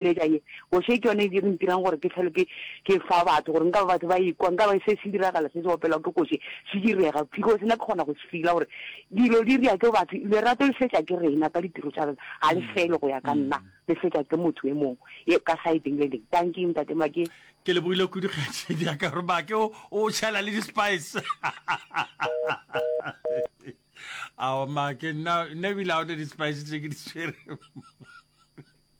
Eja ye bošwa ke yona e di re ntirang gore ke hlolo ke ke fa batho gore nka ba batho ba ikwa nka ba se se diragala se se opelwa ke koši se direga phiko sena ke kgona go se fila gore dilo di ria ke batho lerato le fetša ke rena ka ditiro tša rena ga le fele go ya ka nna le fetša ke motho e mongwe e ka sideng le leng thank you ntate make ke le bogile kudu kgetše di ya ka gore make o o tšhela le di-spice ao make nna nna ebile a one di-spice tse ke di tshwere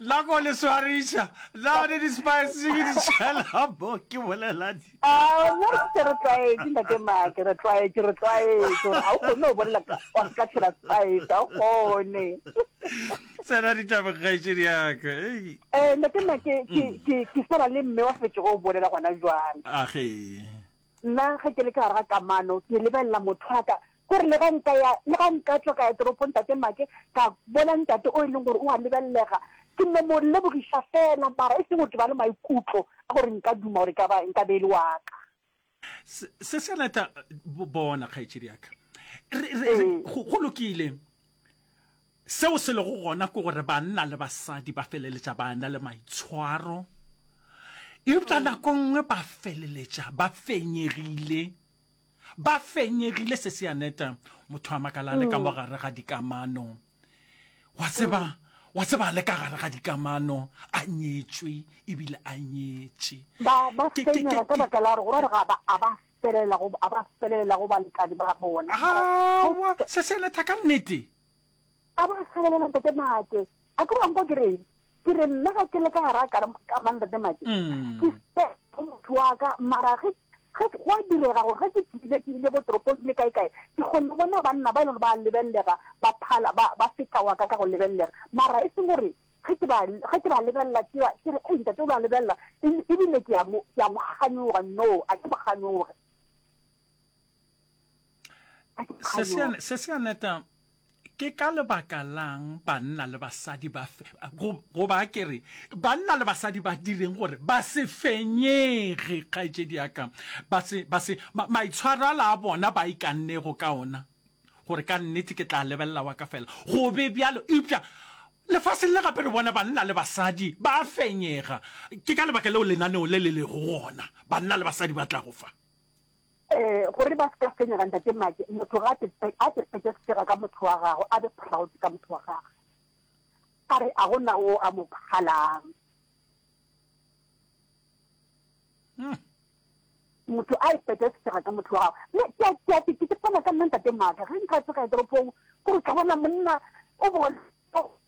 la go le swariša la ne di-spice ke di tšhela mo ke boleladi ke re tlwaetse ntate make re tlwaetse re tlwaetse gore ga o kgone go bolela wa se ka tshela spice ga o kgone tsena ditabokgaetšedi yaka um ntate make ke swana le mme wa fetšego o bolela gona jwale age Nna ge ke le ka gare ga kamano, ke lebelela motho wa ka. Ke re le ge nka ya, le ge nka tšwa ka ya toropong Tate Make, ka bona Ntate o e leng gore o a lebelelega, ke no mo lebogiša feela, mara e seng gore ke ba le maikutlo a gore nka duma gore e ka ba, nka be e le wa ka. Se, se se rata, bona, kgaetšedi ya ka. Re, re, re, go, go lokile. Seo se lego gona ke gore banna le basadi ba feleletša ba na le maitshwaro, eupša nako nngwe ba feleletša ba fenyegile. Ba fenyegile, se se a neta. Motho a makala a le ka mo gare ga dikamano, wa tseba, wa tseba, a le ka gare ga dikamano, a nyetšwe ebile a nyetše. Ba, ba fenyega ka baka la gore, gore ga ba, a ba felelela go, a ba felelela go balekane ba bona. Aowa, se se a neta ka nnete. A bo a kgalelela Ntate Make. A ke wa nkwa ke reng? Ke re nna ga ke le ka gara ka kama Ntate Make. Ke se go motho wa ka, mara ge ge go a direga gore ge ke tsile ke ile bo toropong ke le kae kae, ke kgone go bona banna ba e leng gore ba a lebellega ba phala ba ba feta wa ka ka go lebellega. Mara e seng gore ge ke ba ge ke ba lebelela ke ba ke re ei Ntate o ba lebelela ebile ke a mo ke a mo kganyoga, no a ke mo kganyoge. se se aneta ke ka lebaka lang banna le basadi ba go ba kere banna le basadi ba direng gore ba se fenyege kgaetšedi yaka ba se ba se maitshwaro a la bona ba ikannego ka ona gore ka nnete ke tla lebelela wa ka fela go be bjalo eupša lefaseng le gape re bona banna le basadi ba fenyega ke ka lebaka leo lenaneo le le lego gona banna le basadi ba tla go fa Ee, gore ba se ka fenyega ntate Mmake, motho ga a tepetše sefega ka motho wa gagwe, a be proud ka motho wa gagwe, a re a gona o a mo phalang. Hmm. motho a ipete setsega ka motho wa gago ke fana ka nna ntate maaka ge nka tsega toropong kore ka bona monna o bona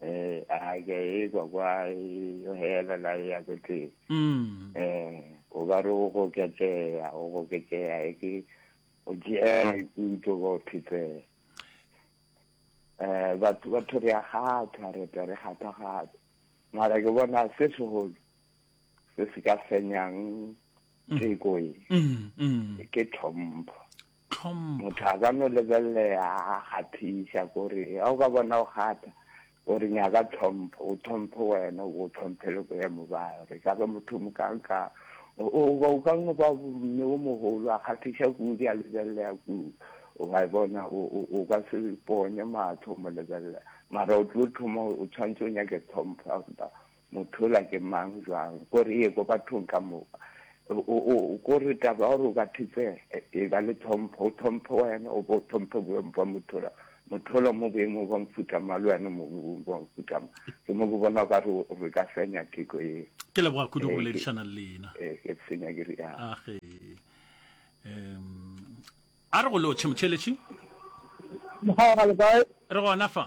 eh a ke e kwa kwa yo hela la ya ke ke mm eh o ba re o go ke ke ya o go ke ke ya e ke o je e ku to go phitse eh ba tu ba thori ya ga tha re ta re ga tha ga mara ke bona se se go se se ka fenyang ke mm. ko e mm, mm. ke thompo Tlhompho. Motho a ka no lebelea a kgathisa kore ga o ka bona o kgatha gore nyaka tlhompho, o tlhomphe wena, o bo tlhomphe le boemo bao. Re ka re motho mokanka goba o ka no ba mme o mogolo a kgathisa kudu, a lebelea kudu. O a e bona, o ka se ponye matlho o mo lebelela, mara o tlo thoma o tshwanetse o nyake tlhompho ya gore Motho yola ke mang, bjang? Ko re ye ko bathong ka moka. O, o, ko re taba ya gore o ka thetsega, e ba le tlhompho. O tlhomphe wena, o bo o tlhomphe boemo bwa motho yola. Motho yola mo boemong bwa mofuta mang, le wena mo boemong bwa mofuta mang. Ke mo ke bona o ka re re ka fenya theko ye. Ke leboga kudu go boledišana le lena. Ee, ke fenya ke rialo. Age. Um, a re go lotšhe, motšheletši. Mokgwa wa ga le kae? Re gona fa.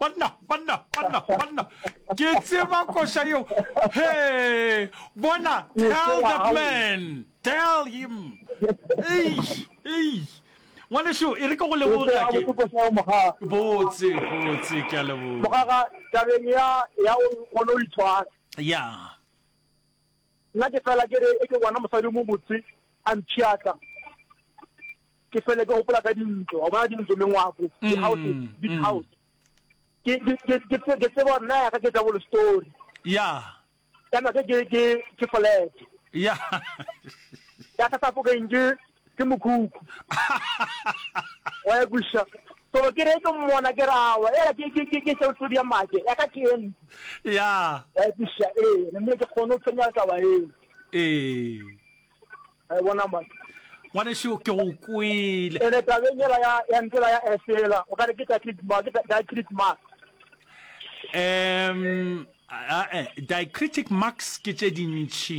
Banna, banna, banna, banna. Ke tseba koša yeo. He, bona, tell that man. Tell him. Eish, eish. Ngwanešu, e re ke go leboge ga ke. Botse, botse, ke a leboga. Mogaga, tabeng ya, ya o kgone o itshwara. Yeah. Nna ke fela ke re eke ngwana mosadi o mo botse a mpshiatla, ke fele ke gopola ka dintlo, wa bona dintlo, mengwako, di-houses, big house. Ke ke ke ke tse- ke tseba gore na ya ka ke double story, ya kana ke ke ke ke flat ya ya ka sa fo keng ke ke mokhukhu wa ya kwiša so ke re ke mmona ke rawa ela ke ke ke ke seo tlo dia make ya ka ke en ya wa ya kwiša eh mme ke kgone go tsenya taba eo eh ai bona ma ngwane seo ke go kwele ene tabeng ela ya ya ntela ya esela o ka re ke tla click ma ke tla click ma um eh, diacritic marks ke tše dintši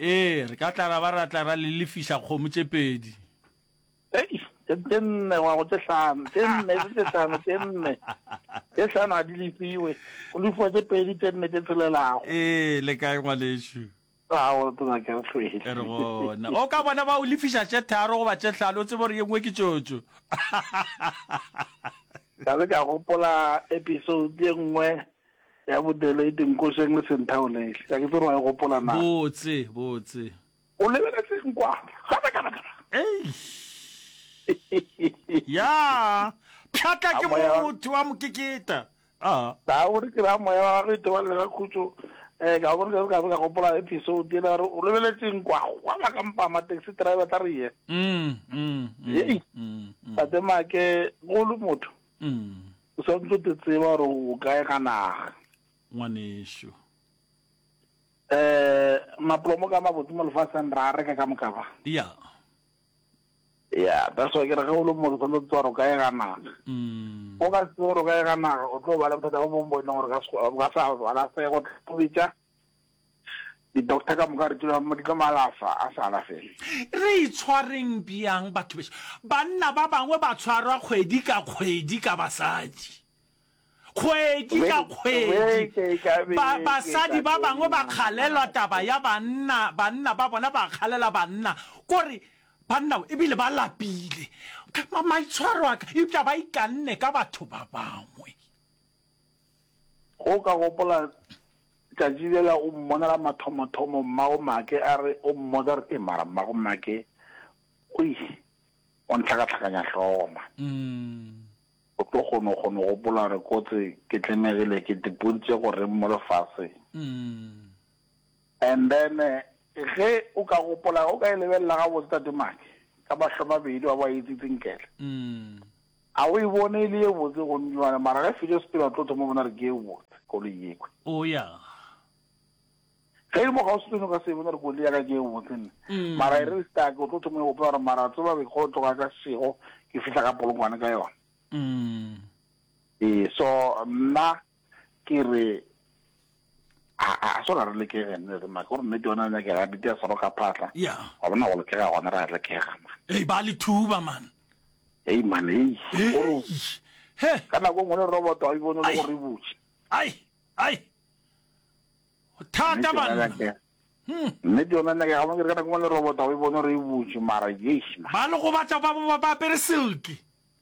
Ee, re ka tla ra ba ra tla ra le lefiša kgomo tše pedi. Ei, tše tše nne wa go tše hlano, tše nne tše tše hlano, tše nne. Tše hlano ga di lefiwe, go lefiwa tše pedi tše nne tše tšhelelago. Ee, le kae ngwanešu? Ao, tona ke re hlwele. E re gona. O ka bona ba o lefiša tše tharo goba tše hlano, o tsebe gore ye nngwe ke tšotšo. Ka be ka gopola episode ye nngwe Ya bodele e dinkošeng le senthaolele. Ga ke tsebe wa e gopola na. Botse, botse. O lebeletseng kwa? Gape kana kana. Eish. Ya. Pšhatla ke mo motho wa mokeketa. Ah. Ta o re ke ra moya wa gagwe ithoba le ga khutso. Eh ka bona ka ka gopola episode e la re o lebeletseng kwa? Wa ba ka mpama taxi driver tla re ye. Mm. Mm. Hey. Mm. Tate make go le motho. Mm. O sa ntse te tseba gore o kae ga naga. Ngwanešu. Eh, maplomo ka mabotse mo lefaseng ra reka ka moka ba. Ya. Ya, that's why ke re ge o le mo o sa ntse tseba gore o kae ga naga. Mm. O ka se gore o kae ga naga, o tlo ba le bothata bo bongwe bo e leng gore o ka se go balasego, o tlo betša. Di-doctor ka moka re tlo di tlo malafa a sa alafele. Re itshwareng bjang batho bešo? Banna ba bangwe ba tshwarwa kgwedi ka kgwedi ka basadi. Kgwedi ka Beke- kgwedi. beke ka Ba, beke basadi ka ba bangwe ba tšona, kgalelwa ngwanaka. taba ya banna, banna ba bona ba kgalela banna. Kore banna e bile ba lapile. Ma, maitshwaro a ka, eupša ba ikanne ka batho ba bangwe. Ge o ka gopola, tšatši lela o mmonela mathomo-thomo mmago Make a re o mmotsa re, Ee, mara mmago Make, oi, o ntlhakatlhakanya hlogo man. O tlo kgono go no gopola gore kotse ke tlemegile ke tipontše go reng mo lefaseng. And then ge o ka gopola o ka e lebelela ga botse tate Maki ka mahlo mabedi wa ba etsitse nkele. A o e bone e le ye botse go nnywana mara ge fetša sepela o tlo thoma bona re ke ye botse koloi yekwe. Oh ya. Ge e le mo ga o se tsone ka se bona re koloi ya ka ke ye botse nna. Mara e re re stake o tlo thoma go gopola gore mara tseba be go tloga ka sego ke fihla ka polokwane ka yona. E so nna ke re a sona re lekege nne re maka gore nnete yona nyakega dite ya soroka phatla ga bona go lekega gona re a lekega man ei ba le thuba man ei man ei ka nako ngwe le robot a ibone le gore butse ai ai thata banna hmm. nnete yona nyake ga bone ka nako ngwe le robot a ibone gore e butse mara yes ba le go batla ba ba apere silke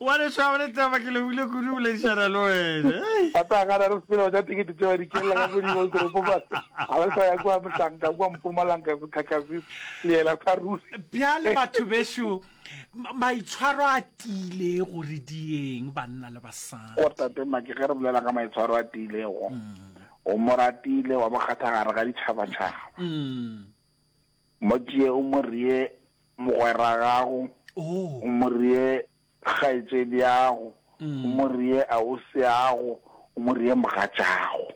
wa le tshwaba le taba ke lebile kudu boledišana le wene ata ga ra re sepela tsa tikete tšeo di kelela ka godimo toropo ba ga ba sa ya kwa mosanka kwa mpumalanga go thakasi leela sa ruri bjale batho beso maitshwaro a tile gore dieng banna le basadi go tate maki ge re bolela ka maitshwaro a tilego mm. o moratile wa bokgathagare ga ditšhabatšhaba mm. Motšee o mo ree mogweragago, o mo ree kgaetšediago, o mo ree ausiago, o mo ree mogatšago.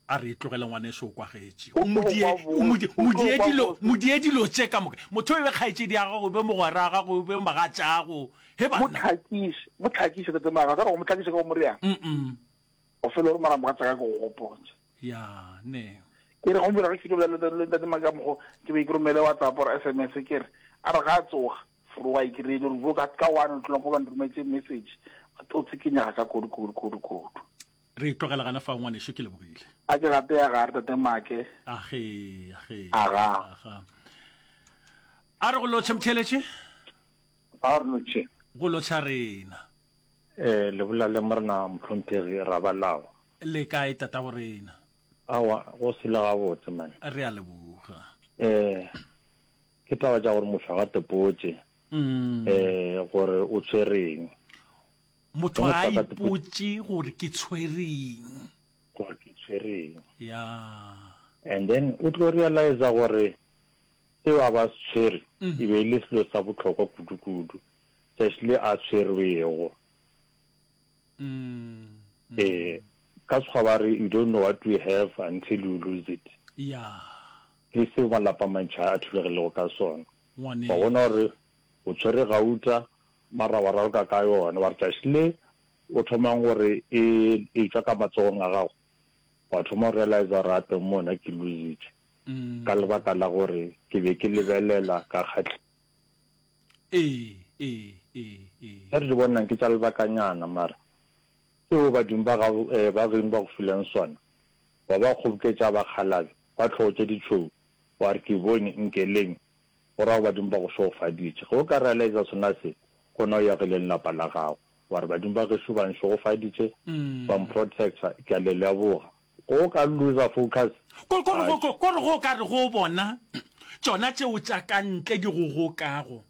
A re e tlogele ngwaneso o kwagetše. O mo die, o mo die, mo die dilo, mo die dilo tše ka moka. Motho e be kgaetšediago, o be mogweraga, o be mogatšago. He banna. Motlhakiše, motlhakiše, tate Maga, sa re go motlhakiše ka go mo reang? O fele o re mara mogatšaka ke go gopotše. Ya, ne. Ke re gomphela re fitobja le, le Ntate Makamogo, ke be ke romele WhatsApp or SMS, ke re, a re ga a tsoga, Forowa e kry-ile gore bjo ka, ka one o'clock ba nrometše message, ba tlo tsikinyega ka kudu, kudu, kudu, kudu. Re e tlogela gana fao, ngwanešu, ke lebogile. A ke gape ya ga Tate Make. Age, age. Aga. Aga. A re go lotšhe, Mtheletše. Ga re no tšhe. Go lo tšha rena. E, le bolale Morena Mphunthegi Rabalawa. Le kae tatabo rena? Aowa, go sele gabotse man. Re a leboga. E, ke taba tša gore motho a ga tepotše e, gore o tshwereng. Motho ga a ipotše gore ke tshwereng. Gore ke tshwereng. Ya. And then o tlo realiza gore. Seo a be a se tshwere e be e le selo sa bohlokwa kudu-kudu, tšatši le a tshwerwego. Ee, ka Sekgowa ba re, you don't know what you have until you lose it. Ke seo malapa a mantši a thulegilego ka sona. Wa bona gore o tshwere gauta, mara wa raloka ka yona, wa re tšatši le o thomang gore e e tšwa ka matsogong a gago, wa thoma go realizer gore gape mo nna ke loose-itše. ka lebaka la gore ke be ke lebelela ka kgatlhego. Ee, ee, ee, ee. Tše re di bonang ke tša lebakanyana, mara seo badimo ba gago ee, ba geno ba go fileng sona, wa ba kgoboketša ba kgalabe ba tlhogo tše ditšhweu, wa re, Ke bone, nkeleng, go ra go badimo ba go šogofaditše. Ge o ka realiza sona se, gona o ya ge le lelapa la gago, wa re, Badimo ba gešo ba nšogofaditše, ba mprotecta, ke a le leboga. Go o ka looser focus. Ko, ko re go, ko, ko re go o ka re go bona tšona tšeo tša ka ntle di go gokago,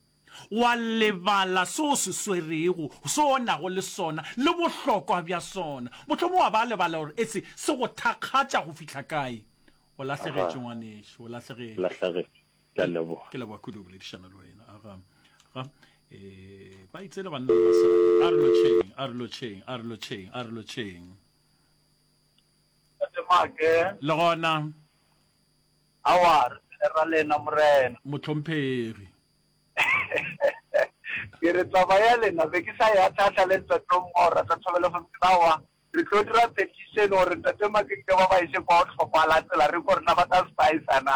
wa lebala se o se swerego, se o nago le sona, le bohlokwa bja sona. Mohlomong wa ba lebala gore e se, se go thakgatša go fihla kae. O Aha. lahlegetše, ngwanešu, o lahlegetše. Lahlegetše. Ke a leboga. Ke leboga kudu go boledišana le wena. Aga, ga, e, ba itse le banna le basadi. A re lotšheng, a re lotšheng, a re lotšheng, a re lotšheng. Le gona. Aowa, re phele ra lena, Morena. Mohlomphegi. Ke re taba ya lena be ke sa e atlhaatlha le Ntate o mongwe wa go rata thobelo gomme ke tla wa re tlo dira petition gore Ntate Makekile ba ba ise kwa go tlhokwala tsela re ko rena ba ka se ba isa na.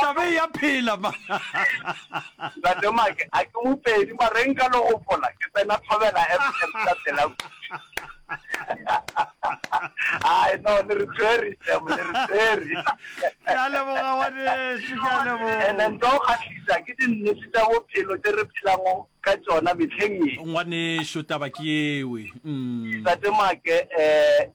Taba e ya phela man. Ntate Make a ke mopedi mare nka lo gopola ke tsena Thobela FM ka pela kudu. Hai no le re tshwere Sam le re tshwere. Ke a leboga ngwanešu ke a leboga. Ene nto kgahlisa ke dinnete tša bophelo tše re phelago ka tšona mehleng ye. Ngwanešu taba ke yewe umm. Ntate Make eh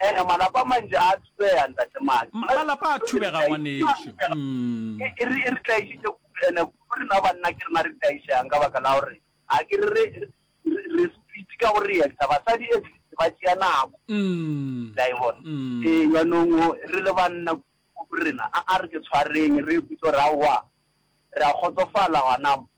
Ee, malapa a mantši a thubega, Ntate Maki. Ma, malapa a thubega, ngwanešu. Umm. E, e re, e re tlaišitše kudu, ene kudu rena banna ke rena re tlaišegang ka baka la gore ga ke re, re, re, re speed ka go reacta. Basadi at least ba tšea nako. Umm. Le a e bona? Umm. Ee, bjanong o, re le banna kudu rena, a, a re ke tshwareng, re ikhutše gore aowa, re a kgotsofala gona mo.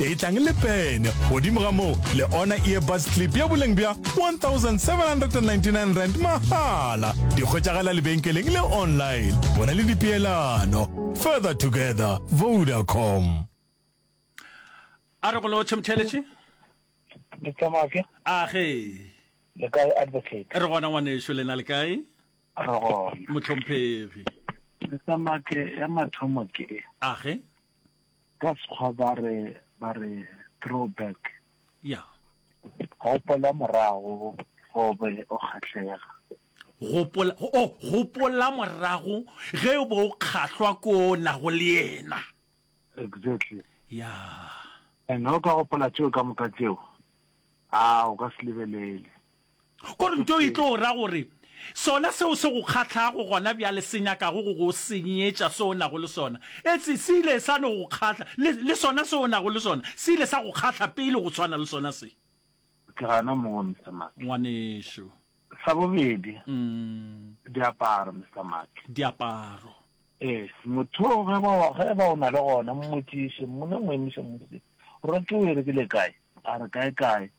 e tlang le pene godimo ga moo le ona earbus clip ya boleng bja 1799 rand mahala di kgwetšagala lebenkeleng le online go na le dipeelano further together vodacom a re go lo tšhemtheletše ditsamake a ge le kae advocate re gona ngwaneso lena le kae re gona motlhomphegi ditsamake ya mathomo ke a ge Ka Sekgwa ba re, ba re throw back. Ya. Gopola morago, ge o be o kgahlega. Gopola, oh, gopola morago, ge o be o kgahlwa ke o nago le yena. Exactly. Ya. And ge o ka gopola tšeo ka moka tšeo, aa, o ka se lebelele. Korinto e tlo ra gore, Sona seo se go kgahlago gona bjale se nyakago go go senyetša se o nago le sona. Etse, se ile sa no go kgahla, le, le sona se o nago le sona se ile sa go kgahla pele go swana le sona se. Ke gana moo, Mister Mark. Ngwanešu. Sa bobedi, diaparo, Mister Mark. Diaparo. Ee, motho yo ge ba, ge ba o na le gona, mmotšiše, mmone, mo emiše mo se, Roto o e rekile kae? A re, Kae-kae.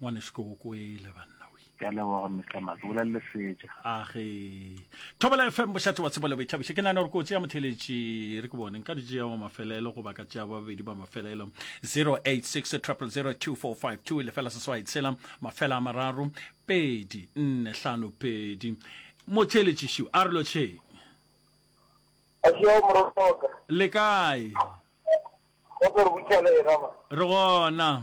ngwanesko o kwele banna we ke a leboga mr maka bolelele seja age thobela fm bošate wa tsebo le boithabiše ke nane gore kotsi ya motheletši re ke bone nka dijea wa mafelelo goba ka tšea babedi ba mafelelo 086 002452 lefela seswai tshela mafela a mararo pedi nne hlano pedi motheletši šiu a re lotšheng le kae re gona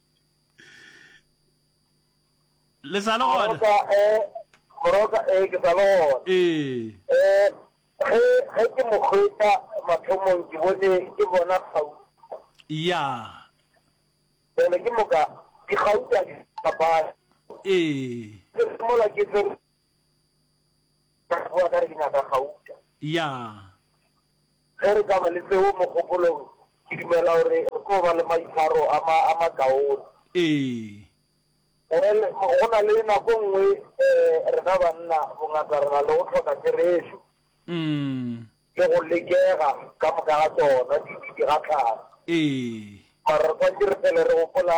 le sa le gona moroka e moroka e ke sa le gona ee eh ge ge ke mo hwetša mathomong ke bone ke bona kgau ya bjale ke moka dikgau tša di papala ee ke mola ke tse Ka boa ka re ke nyaka gauta. Ya. Ge re ka ba le seo mogopolong, ke dumela gore re tlo ba le maitshwaro a ma, a makaone. Ee. Well, go na le nako nngwe, um rena banna bongata re na le go hloka therešo. Mm. Le go lekega ka moka ga tsona, di, di gahlana. Ee. Mara re tshwanetse re fele re gopola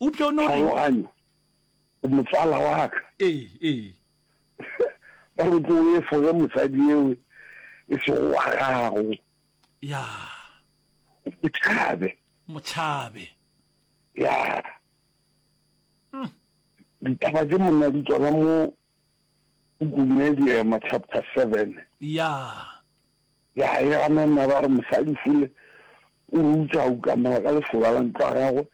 O tlo no reng? Tlhaloganyo, O motswala wa ka. Ee, ee. Ba re o tlo o efoge mosadi ewe e sego wa gago. Ya. O mo tšhabe. Mo tšhabe. Ya. Ditaba tše monna di tswala mo Go kume Diema chapter seven. Yaa. Ya e ganana ba re mosadi fule o rutsa a ukamela ka lesoba la ntlo ya gagwe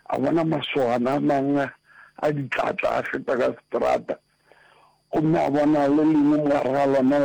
a bona masogana a manga a ditlatla a feta ka seterata gomme a bona le lengwe mogare ga lona